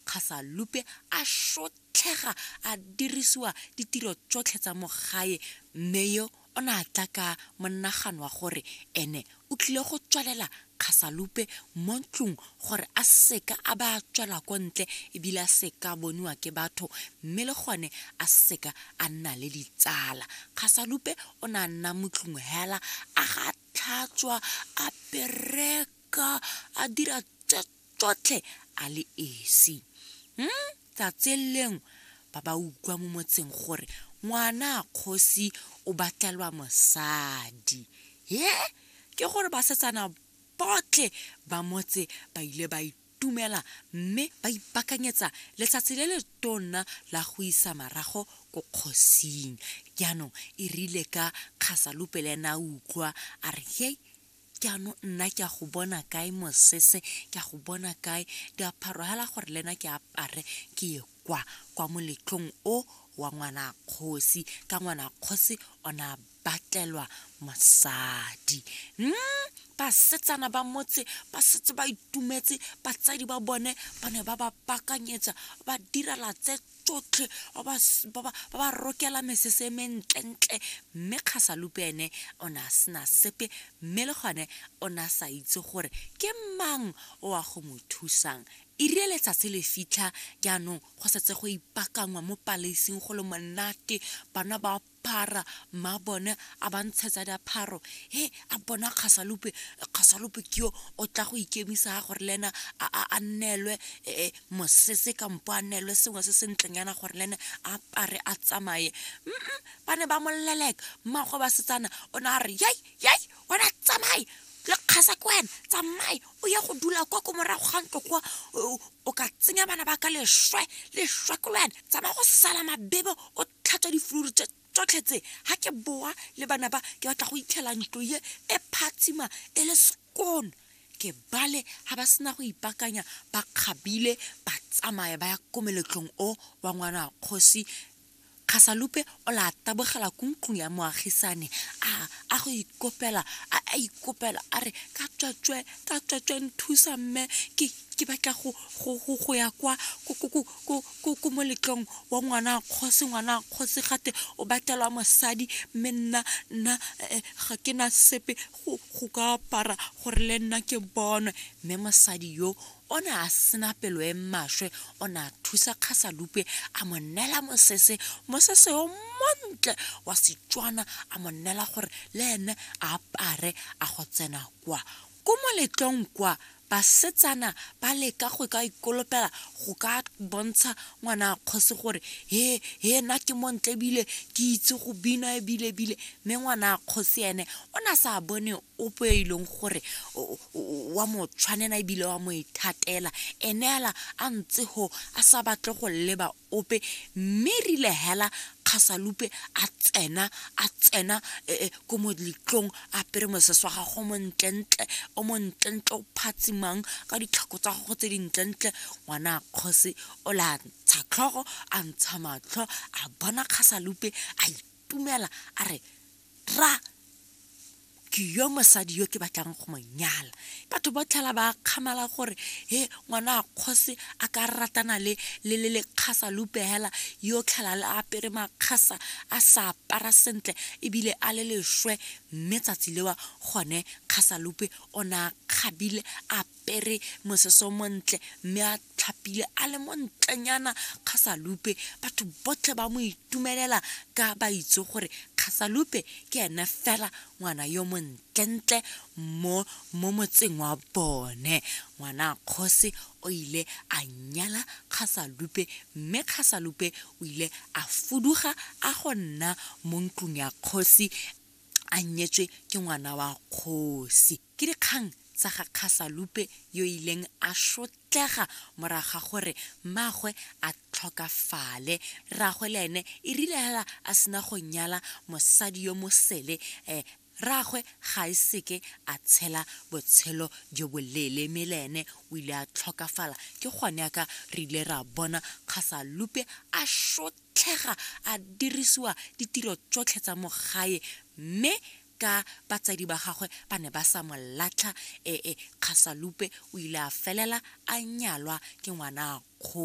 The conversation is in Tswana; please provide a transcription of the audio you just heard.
Kgasalupe a shotlhega a dirisiwa ditiro tsotlhe tsa mo gae mme yo o ne a tla ka monagano wa gore ene o tlile go tswalela Kgasalupe mo ntlong gore a seka a ba a tswela ko ntle ebile a seka a boniwa ke batho mme le gone a seka a nna le ditsala. Kgasalupe o ne a nna mo tlong hela a ga tlhatswa a bereka a dira tse tsotlhe a le esi hmm? tsatseleng ba ba utlwa mo motseng gore ngwana a kgosi o batlelwa mosadi he ke gore basetsana botlhe ba motse ba ile ba itumela mme ba ipakanyetsa letsatsi le le tonna la go isa marago ko kgosing jaanong e rile ka kgasalupe le ena a utlwa a re hei jaanong nna ke a go bona kae mosese ke a go bona kae diaparo fela gore le ena ke apare ke ye kwa kwa moletlong o wa ngwana kgosi ka ngwana kgosi o ne a batlelwa mosadi mm basetsana ba motse ba setse ba itumetse batsadi ba bone ba ne ba ba pakanyetsa ba direla tse tsotlhe ba ba s- ba ba- ba ba rokela mesese e mentlentle mme kgasalupe ene o ne a sena sepe mme le gone o ne a sa itse gore ke mang o a go mo thusang irie letsatsi le fitlha jaanong go setse go ipakangwa mo palaising go le monate bana ba phara mma bone a ba ntshetsa diapharo he a bona kgasalope kgasalope ke yo o tla go ikemisa ga gore le ena a a- a nnelwe eh, mosese kampo a nnelwe sengwe se se ntlenyana gore le ene a apare a tsamaye Mm-mm, ba ne ba moleleka mmago ba setsana o ne a re yai yai wena tsamaye le kgasa ke wena tsamaye o ye go dula kwa ko morago ga ntlo kwa o- o ka tsenya bana ba ka leswe leswe ko le wena tsamaya go sala mabebe o tlhatswa difluru tse tsotlhe tse ga ke boa le bana ba ke batla go itlhela ntlo ye e phatsima e le sekone ke bale ga ba sena go ipakanya ba kgabile ba tsamaya ba ya ko meletlong o wa ngwana kgosi kgasalupe o la tabogela ko ntlong ya moagisane a a go ikopela a a ikopela a re ka tswatswe ka tswatswe nthusa mme ke ke batla go go go go ya kwa ko ko ko ko koko mo letlong wa ngwana a kgosi ngwana a kgosi gate o batelwa mosadi mme nna nna eh, ga ke na sepe go go ka apara gore le nna ke bonwe mme mosadi yo o ne a sena pelo e maswe o ne a thusa kgasalupe a mo neela mosese mosese o montle wa setswana a mo neela gore le ene a apare a go tsena kwa Ko moletlong kwa, basetsana ba leka go ka ikolopela go ka bontsha ngwana kgosi gore he he nna ke montle ebile ke itse go bina ebile ebile mme ngwana kgosi ene o ne a sa bone ope e leng gore wa mo tshwanela ebile wa mo ithatela ene fela a ntse go a sa batle go leba ope mme rile hela kgasalupe a tsena a tsena eh, eh, ko molitlong a apere mosese wa gago montlentle o montlentle o phatsimang ka ditlhako tsa gago tse dintlentle ngwana kgosi o le a ntsha tlhogo a ntsha matlho a bona kgasalupe a itumela a re ra ke yo mosadi yo ke batlang go mo nyala batho ba tlhela ba kgamala gore he ngwana a kgosi a ka ratana le le le lekgasa lupehela yo tlhela le apere makgasa a sa apara sentle ebile a le lešwe mme tsatsi lewa gone kgasalupe o ne a kgabile a apere mosese o montle mme a tlhapile a le montlenyana kgasalupe batho botlhe ba mo itumelela ka ba itse gore kgasalupe ke ene fela ngwana yo montlentle mo mo motseng wa bone ngwana kgosi o ile a nyala kgasalupe mme kgasalupe o ile a fuduga a go nna mo ntlong ya kgosi a nyetswe ke ngwana wa kgosi Ke dikgang tsa ga Kgasalupe yo a ileng a sotlega morago ga gore mmaagwe a tlhokafale. Rraagwe le ene e rile hela a sena go nyala mosadi yo mosele, rraagwe ga a seke a tshela botshelo jo boleele mme le ene o ile a tlhokafala. Ke gone yaka re ile ra bona Kgasalupe a sotlega a dirisiwa ditiro tsotlhe tsa mo gae mme ka batsadi ba gagwe ba ne ba sa mo latlha e e kgasalupe o ile a felela a nyalwa ke ngwana kgo